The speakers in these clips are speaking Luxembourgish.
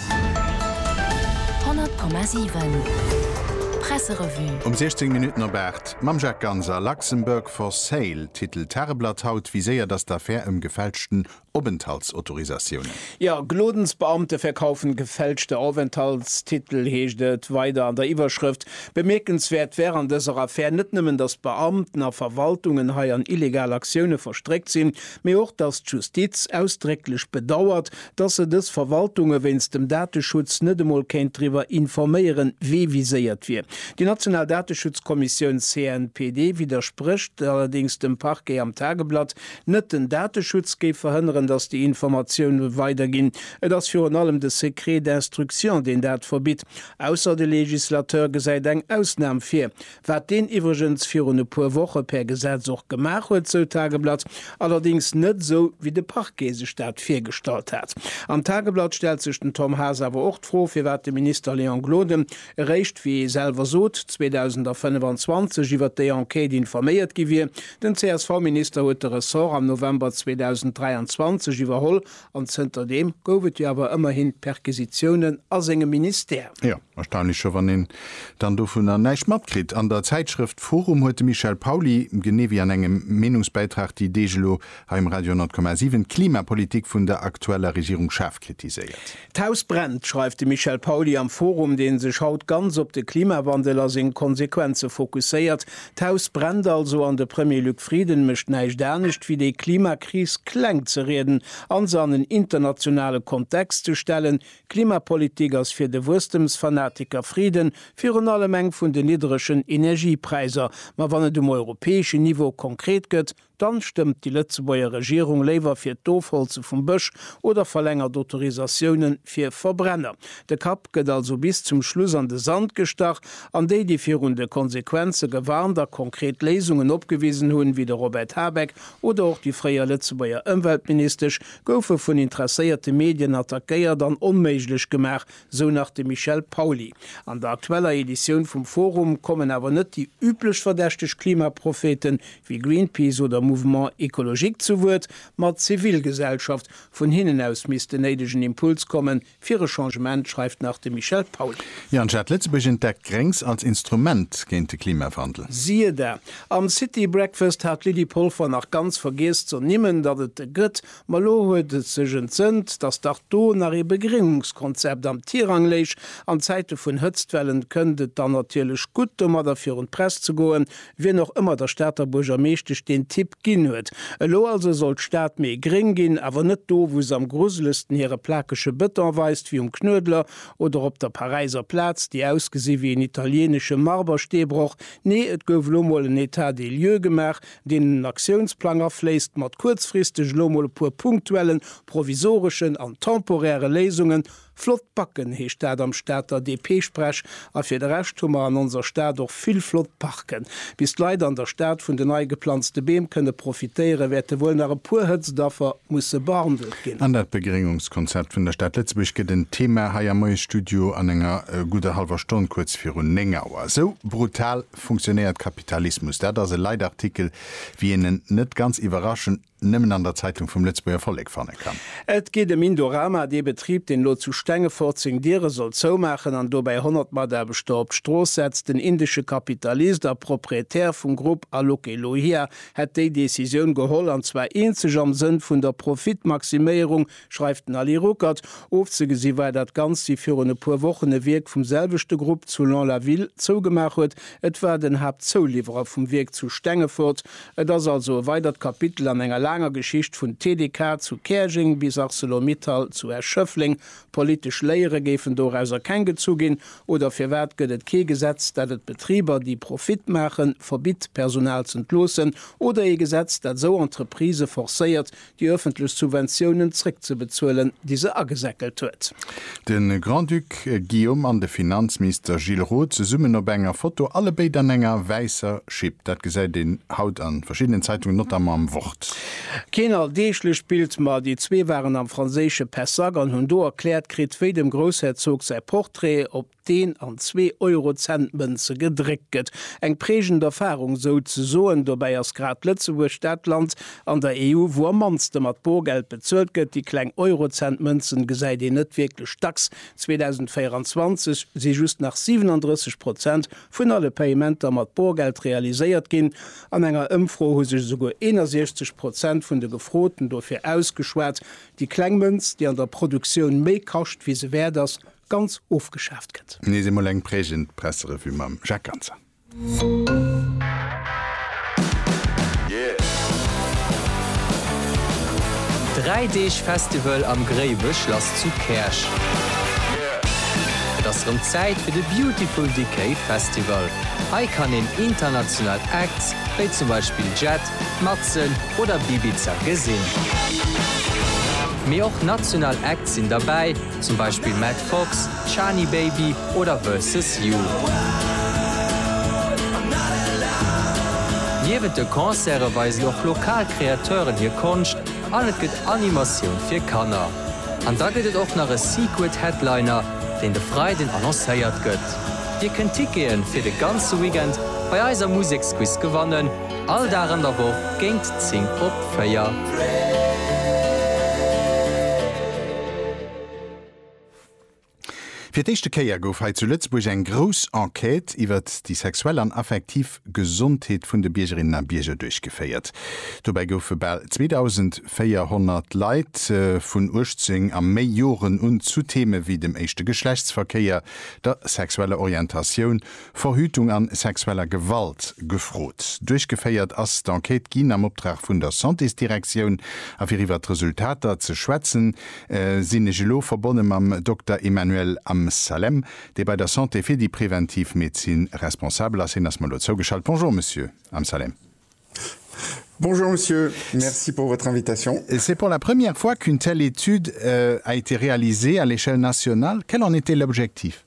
100,7 Presserevue. Um 16 Minutten op 8 mam Jacques Ganser, Luxembourg for sale titelt d'Tageblatt haut, Wie séiert ass d'Affär ëm gefälschten Openthaltsautorisatiounen? Jo, Glodensbeamte verkaufen gefälschte Aufenthaltstitel, heescht et weider an der Iwwerschrëft. Bemierkenswäert wär an dëser Affär net nëmmen, datt d'Beamten a Verwaltungen hei an illegal Aktioune verstréckt sinn, mee och, datt d'Justiz ausdrécklech bedauert, dass se dës Verwaltunge wéinst dem Dateschutz net emol kéint driwwer informéieren, wee viséiert wier. Déi national Dateschutzkommissioun CNPD widdersprécht allerdéngs dem Parquet am Tageblatt. Net den Dateschutz géif verhënneren, dass déi Informatioune weider ginn. Et ass virun allem de Secret d'instruction, deen dat verbitt, ausser de Legislateur gesäit eng Ausnam vir. wat deen iwwregens virun e puer Woche per Gesetz och gemaach huet, sou d'Tageblatt, allerdéngs net esou wéi de Parquet sech dat virgestallt hat. Am Tageblatt stellt sech den Tom Haas awer och d'Fro, firwat de Minister Léon Gloden eréischt, wéi ee selwer sot, 2025 iwwert déi Enquête informéiert gi wier. Den CSV-Minister huet de Ressort am November 2023 iwwerholl An zënter deem gouf et jo awer ëmmerhin Perquisitiounen a sengem Ministère. Jo, erstaunlech scho, wann een dann dovunner näischt matkritt. An der Zäitschrëft forum huet de Michel Pauly, genee wéi an engem Meenungsbäitrag déi Deeg elo hei um Radio 10,7, d'Klimapolitik vun der aktueller Regierung schaarf kritiséiert. D'Haus brennt, schreift de Michel Pauly am forum, dee sech haut ganz op de Klimawandel a seng Konsequenze fokusséiert, D'Haus brennt also an de Premier Luc Frieden mécht näischt anescht wéi déi Klimakris kleng ze rieden an se an en internationale Kontext ze stellen. Klimapolitik ass fir de Wuesstemsfanatiker Frieden virun allem eng vun den niddregen Energiepräiser. Ma wann et um europäeschen Niveau konkret gëtt, Dann stëmmt déi Lëtzebuerger Regierung léiwer fir d'Ofholze vum Bësch oder verlängert Autorisatiounen fir Verbrenner. De Kapp gëtt also bis zum Schluss an de Sand gestach, an déi, déi virun de Konsequenze gewarnt a konkret Léisungen opgewisen hunn, wéi de Robert Habeck oder och déi fréier Lëtzebuerger Ëmweltministesch, goufe vun interesséierte Medien attackéiert an onméiglech gemaach, Sou nach de Michel Pauly. An der aktueller Editioun vum Forum kommen awer net déi üblech verdächteg Klimaprophete wéi Greenpeace oder Mouvement Ecologique zu Wuert, ma d'Zivilgesellschaft. Vun hinnen aus misst den néidegen Impuls kommen, fir e Changement, schreift nach de Michel Pauly. Jan Schad, Lëtzebuerg entdeckt Gréngs als Instrument géint de Klimawandel. Siehe da. Am City Breakfast hat d'Lydie Polfer nach ganz vergiess z'ernimmen, datt et e gëtt, Ma lo huet et sech entsënt, datt dach do nach ee Begrinnungskonzept am Tirang léich. An Zäite vun Hëtztwellen kënnt et dann natierlech gutt, domadder virun d'Press ze goen, wien och ëmmer der Stater Buergermeeschtesch deen Tipp ginn huet. Elo also soll d'Stad méi gréng ginn, awer net do, wou se am gruselegsten hire plakege Bëton weist, wéi um Knuedler oder op der Paräiser Plaz, déi ausgesi wéi en italienesche Marbersteebroch. Nee, et gouf elo mol en Etat des lieux gemaach. Deen Aktiounsplang erfléisst mat kuerzfristeg elo mol e puer punktuellen, provisoreschen an temporäre Léisungen. Flott Backen, heescht dat am Stater DP-Sprech. A fir de Rescht hu mer an onser Stad och vill flott Parken. Bis d'Leit an der Stad vun den nei geplanzte Beem kënne profitéieren, wäerte wuel nach e puer Hëtztdaffer musse behandelt ginn. An dat Begréngungskonzept vun der Stad Lëtzebuerg gëtt en Thema hei am Moiesstudio an enger gudder hallwer Stonn, kuerz virun 9 Auer. Esou brutal funktionéiert Kapitalismus. Dat ass e Leitartikel, wéi een en, net ganz iwwerraschend, nëmmen an der Zeitung vum Lëtzebuerger Vollek fanne kann. Et geet ëm Indorama, dee Betrib, deen elo zu Stengefort seng Diere soll zoumaachen an dobäi 100 Mataarbechter op d'Strooss setzt. Den indesche Kapitalist a Proprietär vum Grupp Alok Elohiya hätt déi Decisioun geholl, an zwar eenzeg am Sënn vun der Profitmaximéierung schreift den Ali Ruckert. Ofzegesi war dat Ganzt, wéi virun e puer Wochen e Wierk vum selwechte Grupp zu Lons-la-Ville zougemaach huet. Et war den Haaptzouliwwerer vum Wierk zu Stengefort. Et ass also e weidert Kapitel an enger laanger Geschicht, vun TDK zu Käerjeng bis Arcelor-Mittal zu Esch-Schëffleng. Politesch Léiere géifen dorauser keng gezu ginn. Oder firwat gëtt et kee Gesetz, dat et Betriber, déi Profit maachen, verbitt, Personal z'entloossen? Oder ee Gesetz, dat esou Entreprisë forcéiert, déi öffentlech Subventiounen zréckzebezuelen, déi se agesäckelt huet. De Grand-Duc Guillaume an de Finanzmister Gilles Roth zesummen op enger Foto, allebéid an enger wäisser Schipp. Dat gesäit een haut a verschiddenen Zeitungen, notamment am Wort. Keen alldeeglecht Bild, ma déi zwee waren am franséische Pessac an hunn do erkläert kritt, wéi dem Groussherzog säi Portrait op. deen an zwee Eurocent-Mënze gedréckt gëtt. Eng prägend Erfarung sou ze soen. Dobäi ass grad Lëtzebuerg dat Land an der EU, wou am mannste mat Borgeld bezuelt gëtt. Déi kleng Eurocent-Mënzen gesäit een net wierklech dacks. 2024 si just nach 37 Prozent vun alle Payementer mat Borgeld realiséiert ginn. An enger Ëmfro hu sech esouguer 61 Prozent vun de Gefroten dofir ausgeschwat, déi kleng Mënz, déi an der Produktioun méi kascht wéi se wäert ass, ganz ofgeschaaft gëtt. Nees eemol eng prägend Presserevue mam Jacques Ganser. Dräi Deeg Festival am Gréiwechlass zu Käerch. Et ass rëm Zäit fir de Beautiful Decay Festival. Hei kann een international Acts, wéi zum Beispill Jet, Matzen oder Bibiza gesinn. Mee och national Acts sinn derbäi. zum Beispill Matt Fox, Shani Baby oder Versus You. Niewent de Concerte weisen och lokal Kreateuren hir Konscht an et gëtt Animatioun fir Kanner. An da gëtt et och nach e Secret Headliner, deen de Freiden annoncéiert gëtt. Dir kënnt Tickete fir de ganze Weekend bei eiser Museksquiz gewannen. All Dag an der Woch géint 10 op 4. Fir d'éischte Kéier gouf hei zu Lëtzebuerg eng grouss Enquête iwwert déi sexuell an affektiv Gesondheet vun de Biergerinnen a Bierger duerchgeféiert. Dobäi goufe bal 2.400 Leit vun 18 a méi Joren un zu Theme wéi dem éischte Geschlechtsverkéier, der sexueller Orientatioun Verhütung an sexueller Gewalt gefrot. Duerchgeféiert ass d'Enquête ginn am Optrag vun der Santésdirektioun. A fir iwwert d'Resultater ze schwätzen, sinn ech elo verbonne mam Dokter Emmanuel Amsalem, dee bei der Santé fir déi präventiv Medezin responsabel ass. Hien ass mer elo zougeschalt. Bonjour, Monsieur Amsalem. Bonjour, Monsieur. Merci pour votre invitation. C'est pour la première fois qu'une telle étude a été réalisée à l'échelle nationale. Quel en était l'objectif?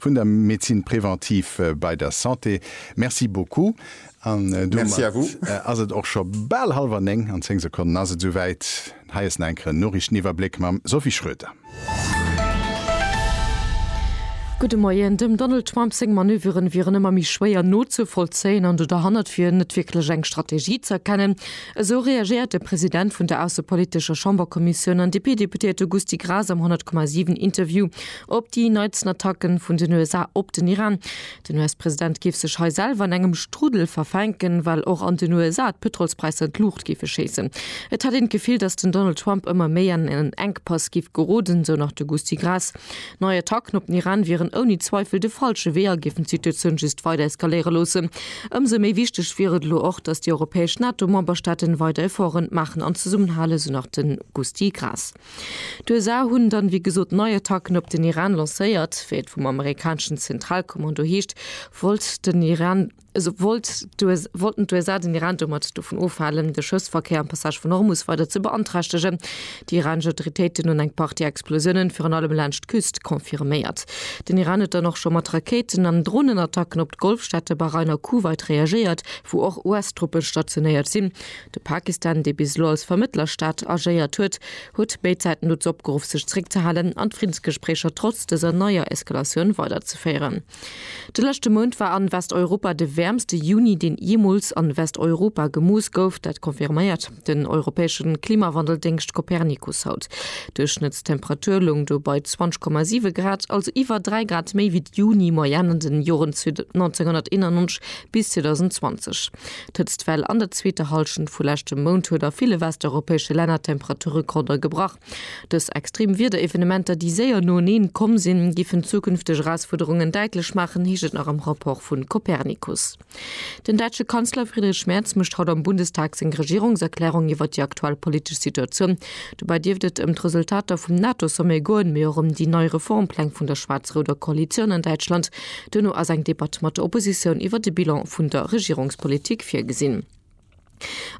Vun der Médecine préventive bei der Santé. Merci beaucoup. An domat ass et och scho bal hallwer néng. An zéng Sekonnen ass et esouwäit. Hei ass nach eng Kéier en Noriichteniwwerbléck mam Sophie Schroeter. Gudde Moien. Dem Donald Trump seng Manöveren wieren ëmmer méi schwéier nozevollzéien an do derhannert wier net wierklech eng Strategie ze erkennen. Esou reagéiert de President vun der aussepolitescher Chamberkommissioun an DP-Deputéierte Gusty Graas am 100,7 Interview Op déi neitsten Attacke vun den USA op den Iran. Den US-President géif sech hei selwer an engem Strudel verfänken, well och an den USA d'Pëtrolspräisser an d'Luucht géife schéissen. Et hätt een d'Gefill, datt den Donald Trump ëmmer méi an en Enkpass géif geroden, esou nach de Gusty Graas. Nei Attacken op den Iran wieren ouni Zweifel de falsche Wee a géifen d'Situatioun just weider eskaléiere loossen. Ëmsou méi wichteg wier et elo och, datt déi europäesch NATO-Memberstaaten weider Efforte maachen an zesummenhalen, esou nach de Gusty Graas. D'USA hunn dann, wéi gesot, nei Attacken op den Iran lancéiert. Wéi et vum amerikaneschen Zentralkommando heescht, wollt den Iran, also wollt d'USA, wollten d'USA den Iran domat dovun ofhalen, de Schëffsverkéier am Passage vun Hormus weider ze beanträchtegen. Déi iranesch Autoritéiten hunn eng Partie Explosiounen, virun allem laanscht d'Küst, confirméiert. Den Iran huet dann och scho mat Rakéiten an Dronenattacken op d'Golfstaate Bahrain a Kuwait reagéiert, wou och US-Truppen stationéiert sinn. De Pakistan, dee bis elo als Vermëttlerstaat agéiert huet, huet béid Säiten dozou opgeruff, sech zeréckzehalen an d'Friddensgespréicher trotz dëser neier Eskalatioun weiderzeféieren. De leschte Mount war an Westeuropa de wäermste Juni, deen jeemools an Westeuropa gemooss gouf. Dat confirméiert den europäesche Klimawandeldéngscht Copernicus haut. D'Duerchschnëttstemperatur loung do bei 20,7 Grad, also iwwer 3 Grad méi wéi d'Juni-Moyenne an den Joren 1991 bis 2020. D'Hëtztwell an der zweeter Hallschent vu leschtem Mount huet a ville westeuropäesche Länner d'Temperaturrekorder gebrach. Dës extrem Wiederevenementer, déi séier noeneen komm sinn, géifen zukünfteg Erausfuerderungen däitlech maachen, heescht et nach am Rapport vu Copernicus. Den däitsche Kanzler Friedrich Merz mécht haut am Bundestag seng Regierungserklärung iwwer déi aktuell politesch Situatioun. Dobäi dierft et ëm d'Resultater vum NATO-Sommet goen, mee och ëm déi nei Reformpläng vun der schwaarz-rouder Koalitioun an Däitschland, Duerno ass eng Debatt mat der Oppositioun iwwer de Bilan vun der Regierungspolitik virgesinn.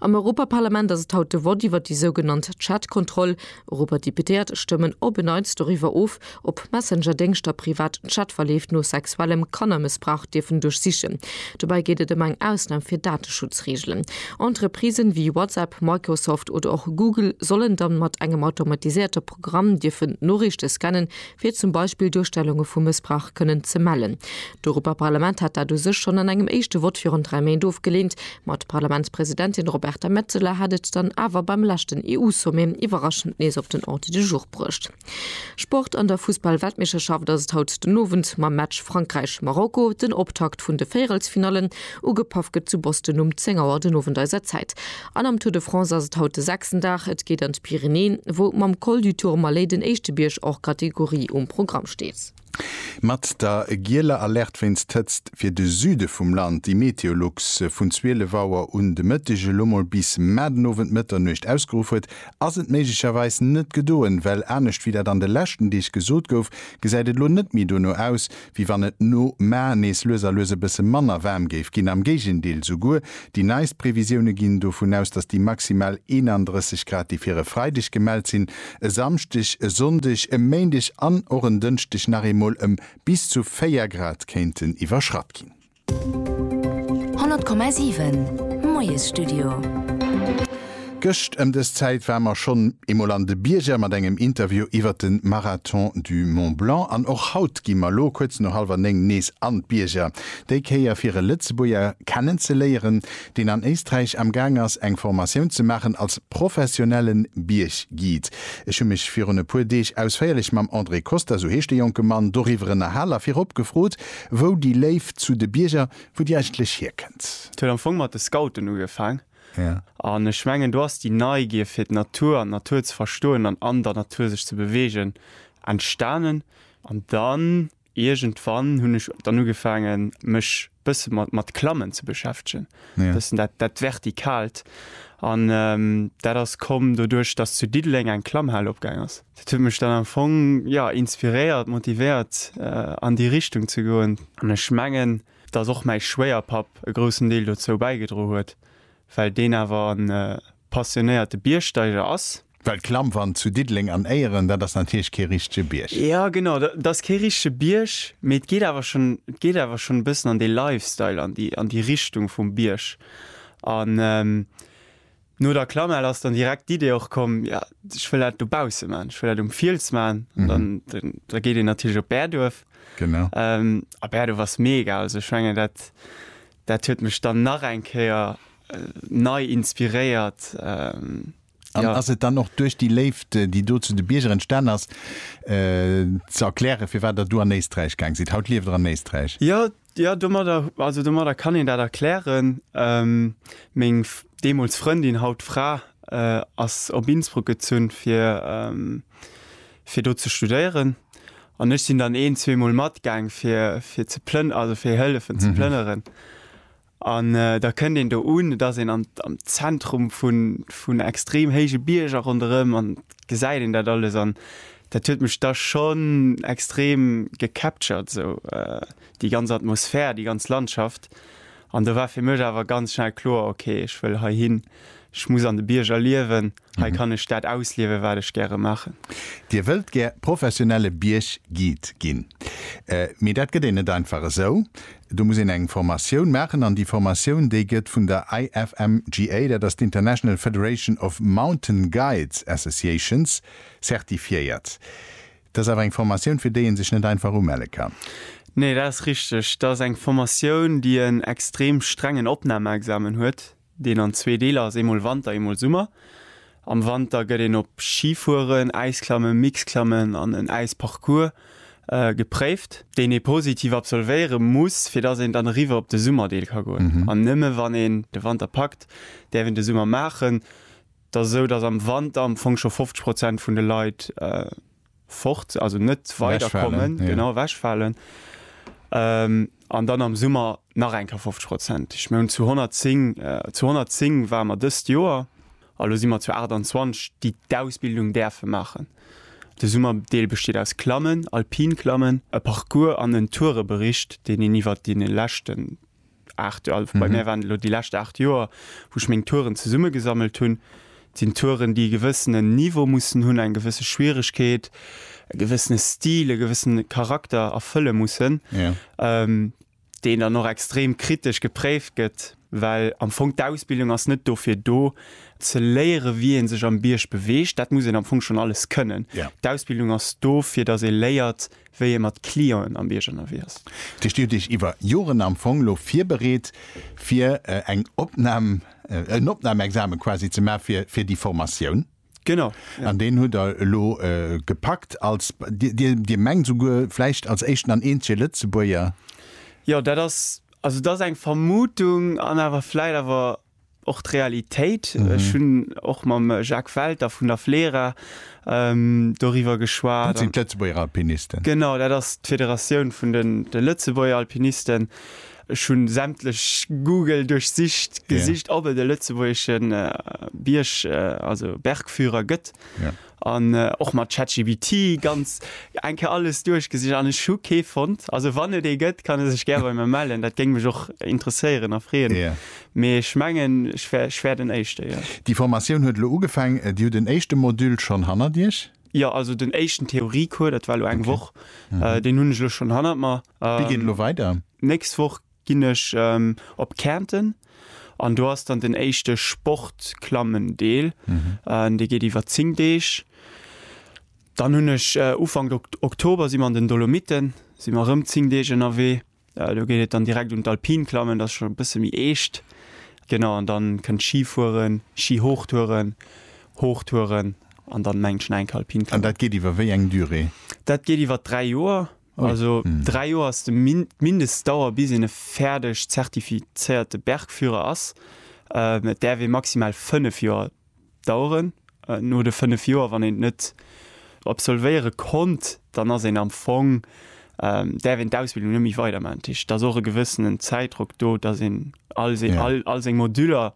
Am Europaparlament ass et haut de Vott iwwer déi sougenannt Chat-Kontroll. Europadeputéiert stëmmen op e Neits doriwwer of, ob Messenger-Déngschter privat Chatverleeft no sexuellem Kannermëssbrauch dierfen duerchsichen. Dobäi geet et ëm eng Ausnam fir Dateschutzreegelen. Entreprisen wéi WhatsApp, Microsoft oder och Google sollen dann mat engem automatiséierter Programm dierfen Noriichte scannen, fir zum Beispill Duerstellunge vu Mëssbrauch kënnen ze mellen. D'Europaparlament hat dat u sech schonn an engem éischte Vott virun dräi Méint ofgeleent, ma d'Parlamentspresidentin Roberta Metsola hat et dann awer beim leschten EU-Sommet iwwerraschend nees op den Ordre du jour bruecht. Sport, An der Fussball-Weltmeeschterschaft ass et haut den Owend mam Match Frankräich-Marokko den Optakt vun de Véierelsfinallen. Ugepaff gëtt zu Boston um 10 Auer den Owend eiser Zäit. An am Tour de France ass et haut de sechsten Dag. Et geet an d'Pyrenäen, wou mam Col du Tourmalet den éischte Bierg hors catégorie um Programm steet. Mat der gieler Alerte wéinst Hëtzt fir de Süde vum Land, déi Meteolux vun 12 Auer un de Mëtteg elo mol bis mar den Owend Mëtternuecht ausgeruff huet, ass et méiglecherweis net gedoen, well anescht wéi dat an de leschten Deeg gesot gouf, gesäit et elo net méi dono aus, wéi wann et no Mar nees lues a lues e bësse manner waarm géif ginn. Am Géigendeel, souguer déi neist Previsioune ginn dovun aus, datt déi maximal 31 Grad, déi fir e Freideg gemellt sinn, e Samschdeg, e Sonndeg, e Méindeg an och en Dënschdeg nach eemol ëm bis zu 4 Grad kéinten iwwerschratt ginn. 100,7 Moiesstudio. Gëscht ëm dës Zäit ware mer schonn eemol an de Bierger mat engem Interview iwwert de Marathon du Mont Blanc an och haut gi mer lo kuerz no hallwer néng nees an d'Bierger, déi Kéier fir e Lëtzebuerger kennenzeléieren, deen an Éisträich am gaang ass eng Formatioun ze maachen als professionelle Bierg-Guide. Ech hu mech virun e puer Deeg ausféierlech mam André Costa, sou heescht de jonke Mann, doriwwer ënnerhal a virop gefrot, Wou déi Léift zu de Bierger, wou déi eigentlech hierkënnt? Et huet am Fong mat de Scouten ugefaang. An ech mengen, do ass déi Neigier fir d'Natur an d'Natur ze verstoen an an der Natur sech ze beweegen entstanen. An dann iergendwann hunn ech dann ugefaangen, mech bësse mat mat Klammen ze beschäftegen, bëssen dat dat Vertikalt. An dat ass komm doduerch, datt zu Diddeleng eng Klammhal opgaang ass. Dat huet mech dann am Fong, jo, inspiréiert, motivéiert, an déi Richtung ze goen. An ech mengen, dass och mäi Schwéierpapp e groussen Deel dozou bäigedro huet, well deen awer en passionéierte Biergsteiger ass. Well d'Klammwand zu Diddeleng an Éieren, dat ass natierlech kee richtege Bierg. Jo, genau, dat ass kee richtege Bierg, mee et geet awer schonn, et geet awer schonn e bëssen an dee Lifestyle, an déi, an déi Richtung vum Bierg. An No der Klamell ass dann direkt d'Idee och komm, jo ech wëll dat dobausse man, ech wëll dat um Fiels man, dann da geet een natierlech op Bäerduerf. Genau. Ähm, a Bäerduerf ass mega, also ech menge dat dat huet mech dann nach eng Kéier äh, nei inspiréiert. Ähm, An ja. ass et dann och duerch déi Léift, äh, déi do zu de Bierger entstan ass, äh, ze erkläre firwat der du an Éisträich gaang sidd? Haut lieft der an Éisträich. Ja, Jo, domadder, also domadder kann een dat erklären. Meng deemools Frëndin, haut Fra, ass op Innsbruck gezunn, fir, fir do ze studéieren. An ech sinn dann een-, zweemol matgaang, fir, fir ze plën-, also fir hëllefen ze plënneren. An da kënnt een do un, et ass een am, am Zentrum vun, vun extrem héije Bierger ronderëm an gesäit een dat alles an Dat huet mech da schonn extrem gecaptured esou, déi ganz Atmosphär, déi ganz Landschaft. An do war fir mech awer ganz schnell kloer, ok, ech wëll heihin, ech muss an de Bierger liewen, hei kann ech dat ausliewen, wat ech gäre maachen. Dir wëllt gär professionelle Bierg-Guide ginn, mee dat gëtt een net einfach esou. Do muss een eng Formatioun maachen an déi Formatioun, déi gëtt vun der IFMGA, dat ass d'International Federation of Mountain Guides Associations, Certifiéiert. Dat ass awer eng Formatioun, fir déi ee sech net einfach umelle kann. Nee, dat ass richteg. Dat ass eng Formatioun, déi en extrem strengen Opnahmeexamen huet, deen an zwee Deeler ass, eemol Wanter, eemol Summer. Am Wanter gëtt een op Schifueren, Äisklammen, Mixklammen an en Äisparcours gepréift, deen ee positiv absolvéiere muss, fir datt een dann eriwwer op de Summerdeel ka goen. An nëmme wann een de Wanter packt, däerf een de Summer maachen. Et ass esou, datt am Wanter am Fong scho 50 Prozent vun de Leit fort, also net weiderkommen, genau, ewechfalen, an dann am Summer nach eng Kéier 50 Prozent. Ech mengen, zu 110, zu 110 ware mer dëst Joer a lo si mer zu 28, déi d'Ausbildung däerfe maachen. De Summerdeel besteet aus Klammen, Alpin-Klammen, e Parcours an en Tourebericht, deen een iwwert déi leschten 8 Joer, also bei mir waren et elo déi lescht 8 Joer, wou ech meng Touren zesummegesammelt hunn. Et sinn Touren, déi e gewëssenen Niveau mussen hunn, eng gewësse Schwieregkeet, e gewëssene Stil, e gewëssene Charakter erfëlle mussen, deen dann och extrem kritesch gepréift gëtt, well am Fong d'Ausbildung ass net dofir do, ze léiere wéi ee sech am Bierg beweegt, dat muss een am Fong schonn alles kënnen. D'Ausbildung ass do, fir datt ee léiert, wéi ee mat Clienten am Bierg ënnerwee ass. Dat heescht, Dir hutt Iech iwwer Joren am Fong elo virbereet, fir eng Opnam, en Opnamexame quasi ze maachen, fir, fir déi Formatioun. Genau, jo. An deen hutt Der elo gepackt als, Dir, Dir mengt souguer, vläicht als éischten an eenzege Lëtzebuerger? Jo, dat ass, also dat ass eng Vermutung an awer vläicht awer och d'Realitéit. Ech hunn och mam Jacques Welter vun der FLERA doriwwer geschwat. Dat sinn d'Lëtzebuerger Alpinisten. Genau, dat ass d'Federatioun vun de Lëtzebuerger Alpinisten. Ech hu sämtlech Google duerchsicht, gesicht, ob et e lëtzebuergeschen Bierg, also Bergführer gëtt. An och mat ChatGPT ganz eng Kéier alles duerchgesicht an ech hu kee fonnt. Also wann et ee gëtt, kann e sech gär bei mir mellen. Dat géing mech och interesséieren a freeën. Mee ech mengen, ech wär, ech wär den Éischte, jo. Déi Formatioun huet elo ugefaang. Dir hutt den éischte Module schonn hannert Iech? Jo, also den éischten Theoriecours, dat war elo eng Woch, deen hunn ech elo schonn hannert mer. Wéi geet elo weider? D'nächst Woch Ginn ech op Kärnten an do ass dann den éischte Sportklammen-Deel, dee geet iwwer 10 Deeg. Dann hunn ech Ufank Oktober si mer an den Dolomiten, si mer erëm 10 Deeg ënnerwee. Do geet et dann direkt un d'Alpinklammen, dat ass schonn e bësse méi eescht. Genau, an dann kënnt Schifueren, Schihochtouren, Hochtouren an dann mengen ech nach enk Alpinklammen. An dat geet iwwer wéi eng Durée? Dat geet iwwer 3 Joer, Also 3 Joer ass d'Mindestdauer bis een e fäerdeg zertifizéierte Bergführer ass. Et däerf ee maximal 5 Joer daueren. No de 5 Joer, wann een et net absolvéiere konnt, dann ass een am Fong, däerf een d'Ausbildung net méi weiderman. Dat heescht, et ass och e gewëssenen Zäitdrock do, datt een All seng, Ja. all, all seng Moduler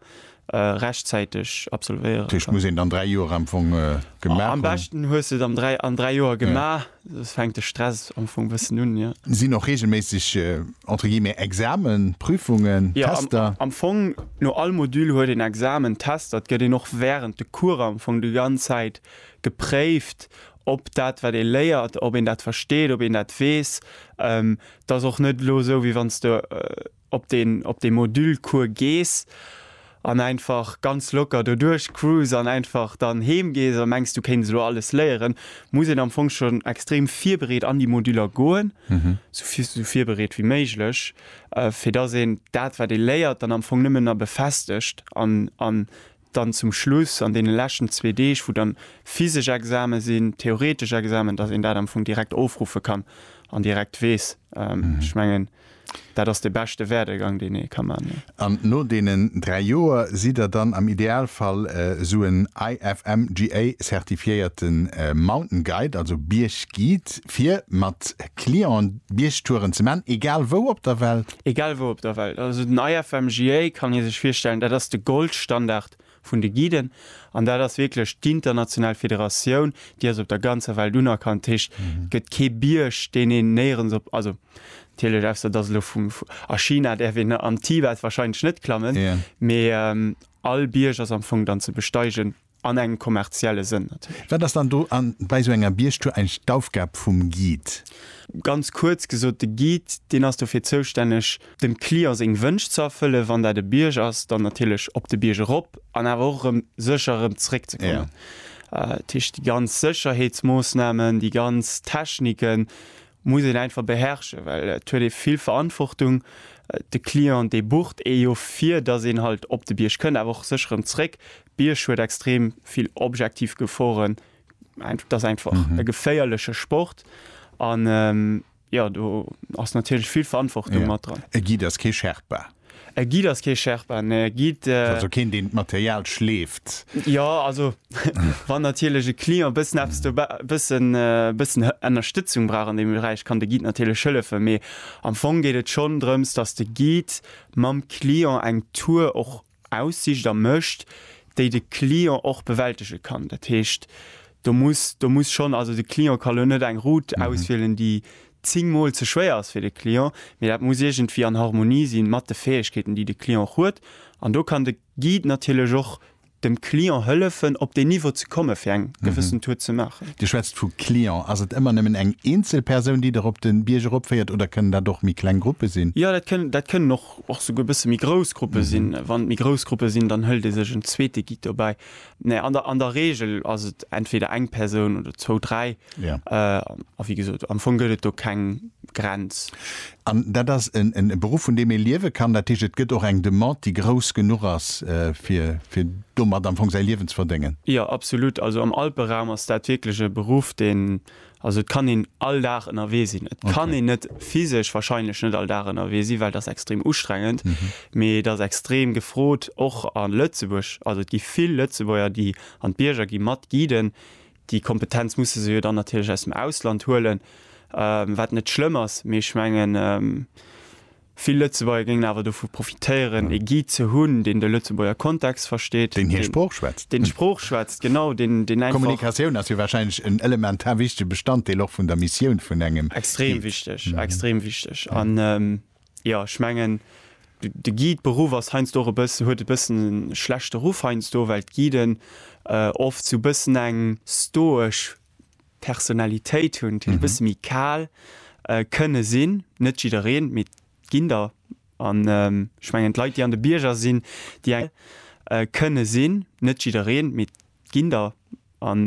äh, rechtzäiteg absolvéieren. Tisch muss een dann 3 Joer am Fong äh, gemaach Am hunn. beschten hues du et am dräi, an dräi Joer gemaach. Soss fänkt de Stress am Fong bëssen un, jo. Sinn och regelméisseg äh, entre guillemets, Examen, Prüfungen, Ja, am, Tester? am Fong, no all Modul huet een Examen, Tester. Et gëtt een och während de Coursen am Fong déi ganz Zäit gepréift, ob dat, wat ee léiert, ob een dat versteet, ob een dat weess. Ähm, 't ass och net elo esou, wéi wann s du äh, ob de op dee Module-Cours gees an einfach ganz locker do duerch cruise an einfach dann heem gees a mengs du kéints elo alles léieren, muss een am Fong schonn extrem virbereet an déi Moduller goen, sou virbereet wéi méiglech, fir dass een dat wat ee léiert dann am Fong nëmmen na befestegt an dann zum Schluss an deene leschten zwee Deeg, wou dann physesch Examen sinn, theoretesch Examen, dass een dat am Fong direkt ofruffe kann an direkt weess. Ech mengen, dat ass de beschte Werdegang, deen ee ka man. An no deenen dräi Joer sidd Der dann am Idealfall esou en IFMGA-zertifiéierte Mountain Guide, also Bierg-Guide, fir mat Clienten Biergtouren ze man, egal wou op der Welt? Egal wou op der Welt, also den IFMGA kann ee sech virstellen, dat ass de Goldstandard vun de Guiden an dat ass wierklech d'international Federatioun, déi ass op der ganzer Welt unerkannt. Dat heescht, et gëtt kee Bierg, deen een néierens op, also natierlech ausser et ass elo vum, a China däerf een am Tibet warscheinlech net klammen, mee all Bierg ass am Fong dann ze besteigen. An engem kommerzielle Sënn natierlech. Wat ass dann do bei esou enger Biergtour eigentlech d'Aufgab vum Guide? Ganz kuerz gesot, de Guide, deen ass dofir zoustänneg, dem Client seng Wënsch ze erfëllen, wann dat e Bierg ass, dann natierlech op de Bierg erop an awer och erëm sécher erëm zréck ze kommen. Dat heescht, déi ganz Sécherheetsmoossnamen, déi ganz Techniken, Muss een einfach beherrschen, well et huet ee vill Verantwortung. De Client dee bucht ee jo fir dass een halt op de Bierg kënnt, awer och sécher erëm zréck. Bierg huet extrem vill objektiv Geforen, et ass einfach e geféierleche Sport an jo do ass natierlech vill Verantwortung mat dran. E Guide ass kee Sherpa. E Guide ass kee Sherpa, mä e Guide. Also keen, deen d'Material schleeft. Jo, also wann natierlech e Client e bëssen eppes do, e bëssen, e bëssen Ënnerstëtzung brauch an deem Beräich, kann de Guide natierlech hëllefen. Mee am Fong geet et schonn drëms, dass de Guide mam Client eng Tour och aussicht a mécht, déi de Client och bewältege kann. Dat heescht, Do muss, do muss schonn, also de Client ka lo net eng Route auswielen, déi zéng Mol ze schwéier ass fir de Client, mee dat muss iergendwéi an Harmonie si mat de Fäegkeeten, déi de Client och huet. An do kann de Guide natierlech och dem Client hëllefen, op deen Niveau ze komme fir eng gewëssen Tour ze maachen. Dir schwätzt vu Client. Ass et ëmmer nëmmen eng eenzel Persoun, déi der op de Bierg eropféiert oder kënnen dat och méi kleng Gruppe sinn? Jo, dat kënnen, dat kënnen och, och souguer e bësse méi grouss Gruppe sinn. Wann et méi grouss Gruppe sinn, dann hëlt ee sech en zweete Guide dobäi. Nee, an der, an der Regel ass et entweder eng Persoun oder zwou, dräi. Ja. A wéi gesot, am Fong gëtt et do keng Grenz. An dat ass en, en Beruff, vun deem ee liewe kann. Dat heescht, et gëtt och eng Demande, déi grouss genuch ass, fir, fir domat am Fong säi Liewen ze verdéngen? Jo, absolut. Also am Alperaum ass dat wierklech e Beruff, dee Also et kann een all Dag ënnerwee sinn. Et kann een net physesch wahrscheinlech net all Dag ënnerwee sinn, well et ass extrem ustrengend. Mee et ass extrem gefrot, och a Lëtzebuerg. Also et gi vill Lëtzebuerger, déi an d'Bierger gi mat guiden. Déi Kompetenz musse se jo dann natierlech aus dem Ausland huelen, wat net schlëmm ass. Mee ech mengen. Vill Lëtzebuerger géingen awer dovu profitéieren, ee Guide ze hunn, deen de Lëtzebuerger Kontext versteet. Deen hir Sprooch schwätzt. Deen d'Sprooch schwätzt, genau. Deen einfach. D'Kommunikatioun ass jo warscheinlech en elementar wichtege Bestanddeel och vun der Missioun vun engem Guide. Extrem wichteg, extrem wichteg. An jo, ech mengen, de Guide-Beruff ass heiansdo och e bëssen, huet e bëssen e schlechte Ruff heiansdo, well d'Guiden oft sou e bëssen eng stoesch. Personalitéit hunn, e bësse méi kal kënne sinn. Net jiddereen, mee et ginn der. An ech mengen, d'Leit, déi an de Bierger sinn, déi eng kënne sinn. Net jiddereen, mee et ginn der. An.